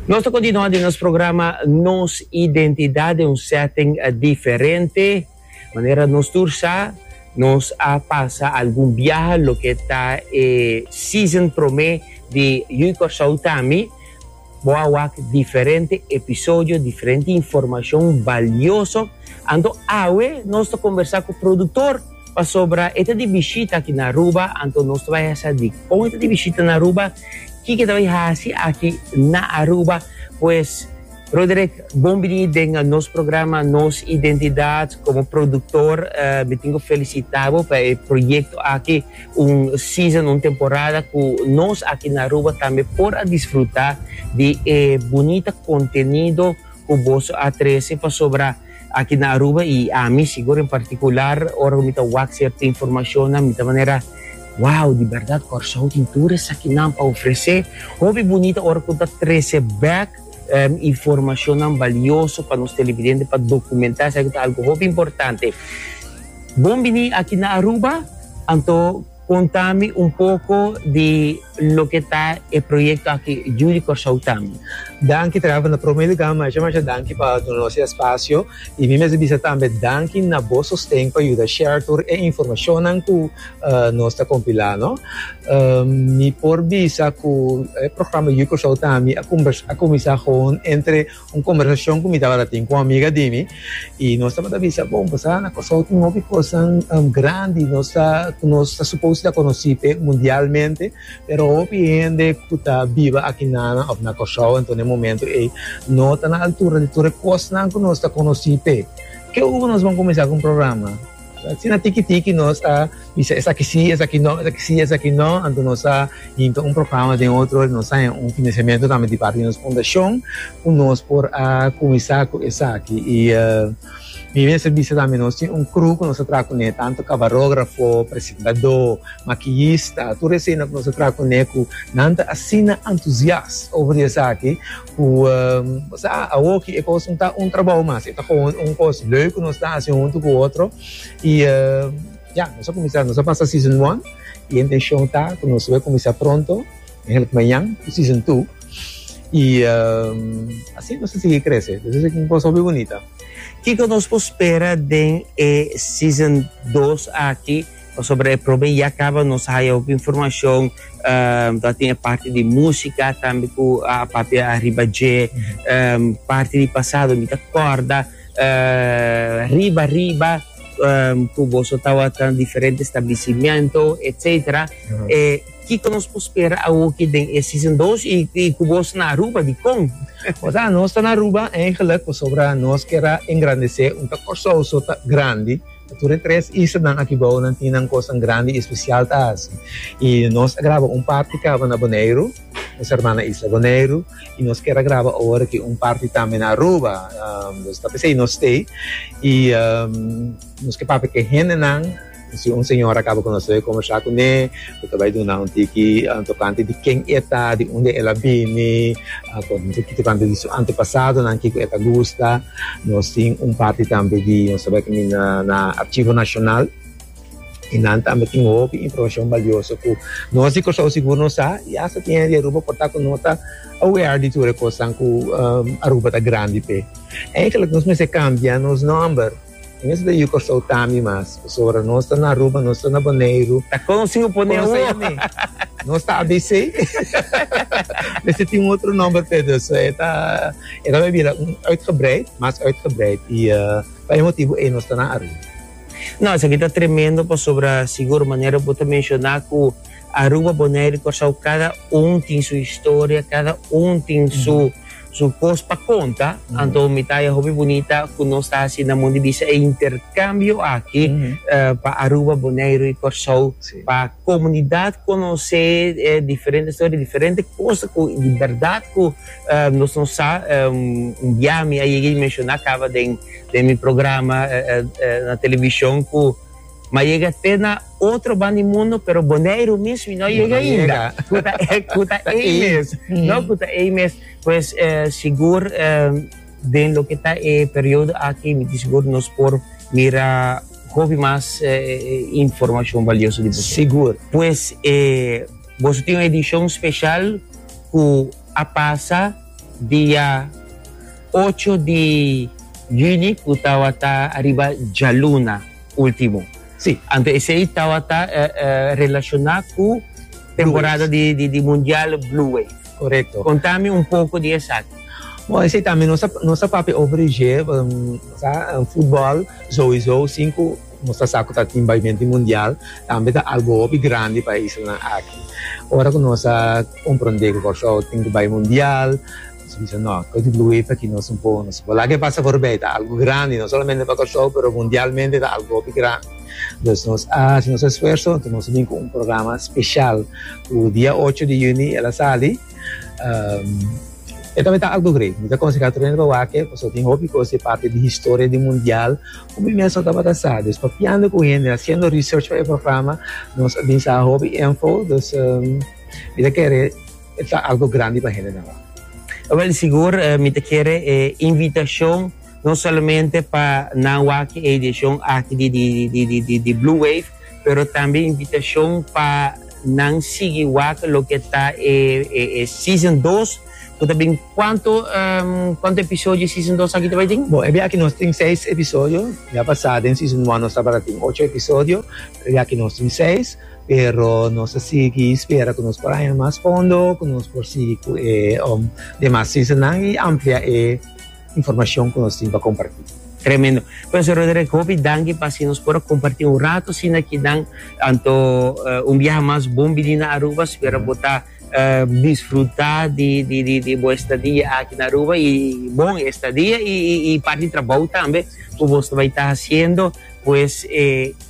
Nos ta kontinua den nos programa Nos identidad den un setting diferente. Manera nos tur sa, nos a pasa algun biaha loke ta e season prome di Hui Kòrsou Ta Mi. Bo a wak diferente episodio, diferente informashon balioso. Anto awe nos ta kombersá ku produktor. Pasobra e ta di bishita aki na Aruba, anto nos ta bai hasa dikon e ta di bishita na Aruba, kiko e ta bai hasi aki na Aruba. Pues, Roderick, bon bini den nos programa Nos Identidad. Komo produktor, mi tin ku felisitá bo pa e proyekto aki, un season, un temporada ku nos aki na Aruba tambe por a disfrutá di e bunita kontenido ku boso a trese, pasobra. Aki na Aruba y ami sigur en particular ora cu mi ta wak cierto informacionnan mi ta manera wow di berdad Corsou tin tur esakinan pa ofrece, hopi bunita ora cu ta trece bek informacionnan valioso pa nos televidente pa documenta esaki ta algo hopi importante. Bon bini aki na Aruba anto. Conta mi un poco di loke ta e proyecto aki Judy Corsou Tambe. Danki Trava, na prome luga masha masha danki pa duna nos e espacio y mi mester bisa tambe danki na bo sosten pa yuda share tur e informacionnan cu nos ta compila no. Mi por bisa cu e programa Judy Corsou Tambe a cuminsa gewoon entre Un kombersacion ku mi tabata tin ku un amiga di mi i nos tabata bisa bon pasobra na Kòrsou tin hopi kosanan grandi nos ta ku nos ta supos ta konosí p'e mundialmente pero hopi hende ku ta biba akinana òf na Kòrsou anto na e momentu ei no ta na altura di tur e kosnan ku nos ta konosí p'e. Ke ora nos bon kuminsá ku un programa? Asina tiki tiki nos a bisa esaki si, esaki no, esaki si, esaki no. Anto nos a hinta un programa den otro, nos a haña un financiamiento tambe di parti di nos fundacion cu nos por a cuminsa cu esaki. Y mi mester bisa tambe nos tin un crew cu nos a traha cune, tanto camarografo, presentado, maquillista, tur esena cu nos a traha cune cu nan ta asina entusiast over di esaki. Ku bo sa, awoki e kos no ta un trabou mas, e ta kon un kos leuk ku nos ta hasi huntu ku otro. I ya, nos a kuminsá, nos a pasa season one i e intenshon ta ku nos lo kuminsá pronto, mehenlik mañan, ku season two. I asina nos ta sigui krese, dus esaki un kos hopi bunita. Kiko nos por spera den e season dos aki? Pasobra e probe ya caba nos a haya hopi informacion ta tin e parti di musica tambe cu a papia ariba dje parti di pasado mi ta corda riba riba cu boso tawata diferente establecimiento etcetera e kico nos por spera awoki den e season dos y cu boso na Aruba dicon? O sea nos ta na Aruba eigenlijk pasobra nos kier a engrandece un ta Corsouso ta grandi. Pa tur e tres islanan aki bao nan tin nan kosnan grandi i espesial ta hasi. I nos a graba un parti kaba na Boneiru, nos herman na isla Boneiru, i nos kier a graba awor aki un parti tambe na Aruba. Nos ta pensá i nos stay. I nos ke papia ku e hendenan, si un señor a kaba ku nos ta konversá kuné. Cu ta bay duna un tiki tocante di ken e ta, di unda el a bini, con un tiki tocante di su antepasadonan, kico e ta gusta. Nos tin un parti tambe di nos ta bay camina na Archivo Nacional y nan tambe tin hopi informacion balioso cu nos di Curaçao sigur no sa y hasta tin hende di Aruba por ta cu no ta aware di tur e cosnan cu Aruba ta grandi p'e. Eigenlijk nos mester cambia nos nomber. Mes den yu Kòrsou ta mi mas. Pasobra nos ta na Aruba, nos ta na Boneiru. Ta konsi u pone u a mi. Nos ta ABC. Mester tin un otro nòmber p'e. Dus e ta e ta bira un uitgebreid, mas uitgebreid. I pa e motibu ei nos ta na Aruba. No, esaki ta tremendo pasobra sigur manera bo ta menshoná ku Aruba, Boneiru i Kòrsou kada un tin su historia, kada un tin su. Su kos pa konta, anto mi ta e hopi bunita ku nos ta hasi na mon di bisa e interkambio aki pa Aruba, Boneiru i Kòrsou, pa komunidat konosé e diferente storia, diferente kos ku di bèrdat ku nos no sa. Un bia mi a yega i menshoná kaba den mi programa na televishon ku. Ma yega te na otro ban di mundu pero Boneiru mismo y no yega ainda. Cu ta ey, cu ta ey mes. No, cu ta ey mes. Pues sigur den loke ta e periodo aki mi di sigur nos por mira hopi mas informacion valioso di boso. Sigur. Pues boso tin un edicion special cu a pasa dia ocho di juni cu tawata ariba djaluna. Ultimo. Sí, anto esei tabata relacioná cu temporada di Mundial Blue Wave. Correcto. Contami un poco di esaki. Bo, esei tambe nos ta, nos ta papia over dje, sa, futbol souiso sin cu nos ta sa cu ta tin baimento di Mundial, tambe ta algo hopi grandi pa e islanan aki. Ora cu nos a comprende cu Kòrsou tin cu bai Mundial. Nos a bisa, No, koe di Blue Wave ta kino su bon. Nos a wak la ke pasa for bay. Ta algu grandi, no solamente pa Kòrsou, pero mundialmente ta algu hopi grandi. Dus nos a hasi nos esfuerso, anto nos a bin ku un programa speshal ku dia ocho di yüni el a sali. E tambe ta algu great. Mi ta akonsehá tur hende pa wak e, pasobra tin hopi kos di parti di historia di mundial ku mi mes no tabata sa. Dus papiando ku hende, hasiendo research pa e programa, nos a bin sa hopi info. Dus mi ta kere. E ta algo grandi pa hendenan wak. Wel, sigur mi ta kere e invitashon no solamente pa nan wak e edishon aki di Blue Wave, pero tambe invitashon pa nan sigui wak loke ta e season dos ku ta bin. Kuantu kuantu episodio e season dos aki ta bai tin? Bo, e biaha aki nos tin seis episodio. Ya pasá den season one nos tabata tin ocho episodio, pero e biaha aki nos tin seis. Pero nos a sigui spera ku nos por haña mas fondo, ku nos por sigui ku e demas sisanan i amplia e informashon ku nos tin pa kompartí. Tremendo. Profesor Rodriguez, hopi danki pa si nos por a kompartí un rato asina aki dan, anto un biaha mas bon bini na Aruba, spera bo ta disfrutá di bo estadia aki na Aruba i bon e estadia i parti trabou tambe ku bo ta bai hasiendo, pues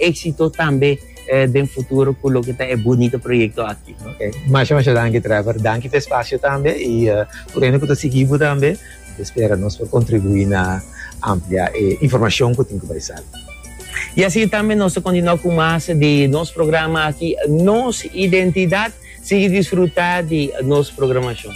éksito tambe. eh, den futuro cu loke ta e bunito proyecto aki. Okay. Masha, masha danki Trevor. Danki pe espacio tambe y uh, eh, por ene cu ta sigibu tambe, te espera nos por contribui na amplia e eh, informacion cu tin cu bai sal. Y así tambe nos te continua cu mas de nos programa aquí, nos identidad, sigue disfruta de nos programacion.